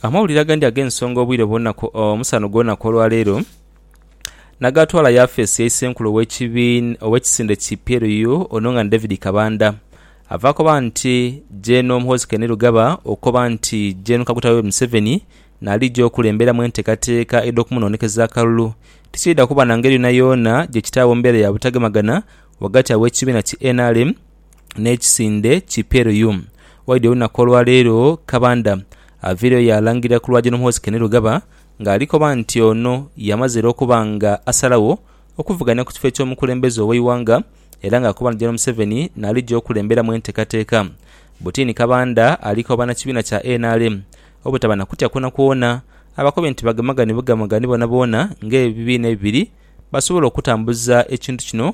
Amawulire agandi ag'ensonga obwire bwona omusana ogw'olunaku olwaleero nagaatwala yafeesi ya Isenkulu ow'ekisinde ki PLU ono nga ni David Kabanda ava koba nti Gen Muhoozi Kainerugaba okoba nti Gen Kaguta Yoweri Museveni naalija okulemberamu enteekateeka edh'okumunoonekeza akalulu tikiidha kuba na ngeri yoonayoona gye kitaagho mbeera ya butagemagana ghagati aw'ekibiina ki nrm n'ekisinde ki Peruyu. Waidhi olunaku olwaleero Kabanda aviireyo yaalangirira ku lwa Gen Muhoozi Kainerugaba nga ali koba nti ono yamaze era okuba nga asalagho okuvuganya ku kifo eky'omukulembeze ow'eighanga era nga akoba nti Gen Museveni naalija okulemberamu entekateka Butini Kabanda ali koba na kibiina kya nrm obutaba na kutya kwonakwona abakobye nti bagemagane bugemagane boonaboona nga ebibiina ebibiri basobola okutambuza ekintu kino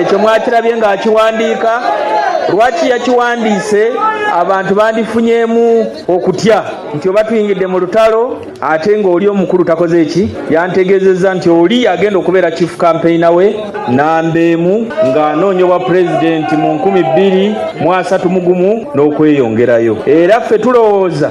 Ekyo mwakirabye ng'akiwandiika. Lwaki yakiwandiise? Abantu bandifunyeemu okutya nti oba twingidde mu lutalo ate ng'oli omukulu takoze ki? Yantegeezezza nti oli y'agenda okubeera Chief Campaigner we namba emu ng'anoonya Obwapulezidenti mu nkumi bbiri mu asatu mu gumu n'okweyongerayo era ffe tulowooza